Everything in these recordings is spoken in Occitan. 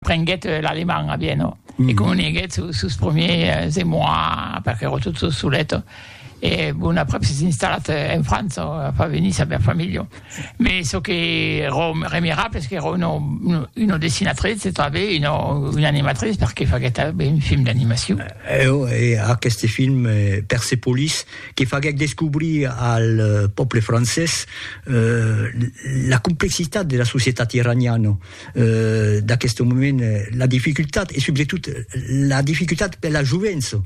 Prenguèt l'alemand a Viena e comuniguèt sos primièrs emòis perque ero tot sos solet e bon aprèp s'es installat en França a far venir sa bèla familha me çò que ero remirable es qu'ero una dessinatrice e tanben una animatrice perque faguèt tanben un film d'animacion. Eo e aqueste film Persepolis que faguèc descobrir al pòble francés la complexitat de la societat iraniana. d'aqueste moment la dificultat e subretot la dificultat per la jovença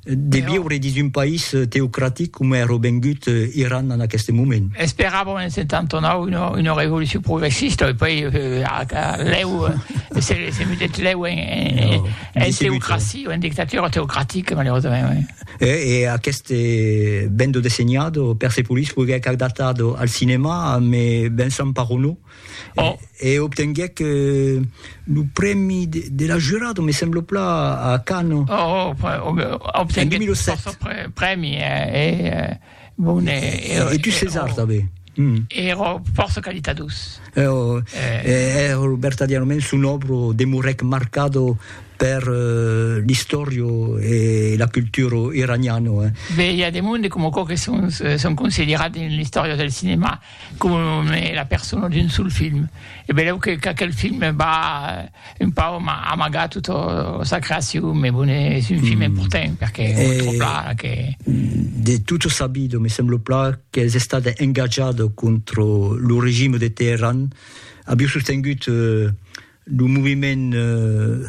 de viure dins un país teocratic coma èra vengut Iran en aqueste moment. Esperàvem en 79 una, una revolucion progressista e poi lèu se, se mudèt lèu en, en, no, en teocracia, en dictatura teocratica malheureusament. Oui. E, e aqueste vendo desenhado Persepolis foguèt adaptat al cinema, me Vincent Parroneau, E obtenguèc lo prèmi de la jurada, me semblo pla, a Cannes. Obtenguèc fòrça prèmi, e bon, e. E dus Césars tanben. Èra fòrça qualitadós. Èra vertadièrament, son òbra demorèc marcada per l'istòria e la cultura iraniana. Be, i a de monde coma aquò que son considerats dins l'istòria del cinèma. com es la persona d'un sol film e belèu que qu'aquel film va un pauc amagar tota sa creacion me bon es un film important perque me tròp la que de tot sabido me semblo pla qu'es estat engatjado contra lo regime de Teheran aviu sostengut Lo moviment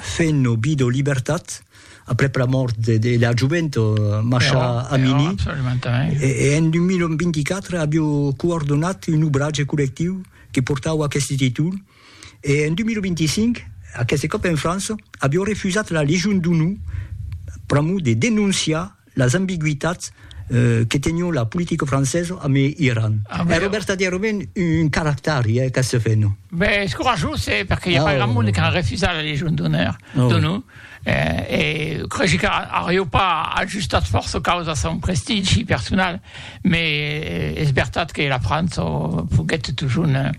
Fenn o Bido Libertat, aprèp la mòrt de la jovent Masha Amini, e en 2024 avió coordonat un obratge collectiu que portava aqueste títol, e en 2025, aqueste còp en França, avió refusat la Legion d'Onor pr'amor de denonciar Las ambigüitats que tenion la politica francesa amb Iran. Èra vertadièrament un caractari, eh, qu'ac se fè, non? Ben, es corajós, eh, perque i a pas grand monde qu'a refusat la Legion d'Honor, donon, eh, e cregi qu'arió pas ajustat fòrça caus a son prestigi personal, me es vertat que la França foguèt totjorn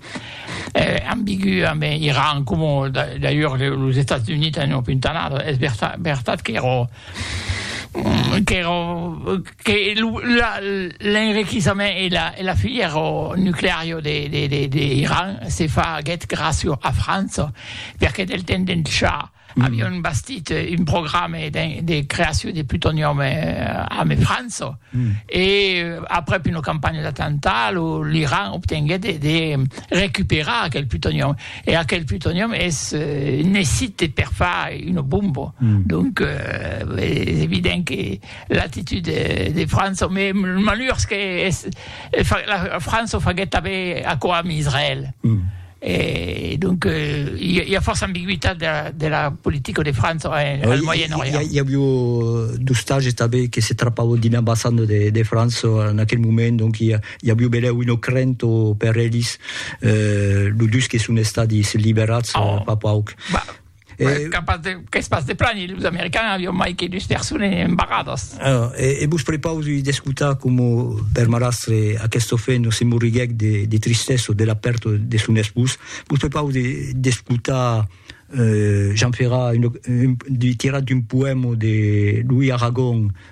ambigü amb Iran, coma d'ailleurs los Estats Units an opuntanat, es vertat qu'èra qu'èra que lo la l'enriquissament e la e la filièr nucleario de de de de Iran se faguèt gràcio a França perque del temps d'en cha avion bastit un programe de de creaciu de plutonium ame França e aprèp una campanha d'attentat lo l'Iran obtenguèt de de recuperar aquel plutonium E aquel plutonium es necite per far una bomba. Mm. Donc, euh, es evident que l'actitud de, de França, mais le malheur que es, la França faguet tanben aquò amb Israël. Mm. Et donc, il euh, y, a force ambiguïté de la, de la politique de France en, eh, oui, Moyen-Orient. Il y, a eu euh, du stage qui se trapava d'une ambassade de, de France en aquel moment, donc il y a, I aviu belèu un ocrent o per elis, lo dus que son estadis liberats fa pauc. Qu'es pas de plani, los americans avion mai que dus persones embarradas. E vos prepausi d'escotar coma per marrastre aqueste ofent se morriguèc de tristessa de la pèrta de son espós. Vos prepausi d'escotar Jean Ferrat tirat d'un poèma de Louis Aragon,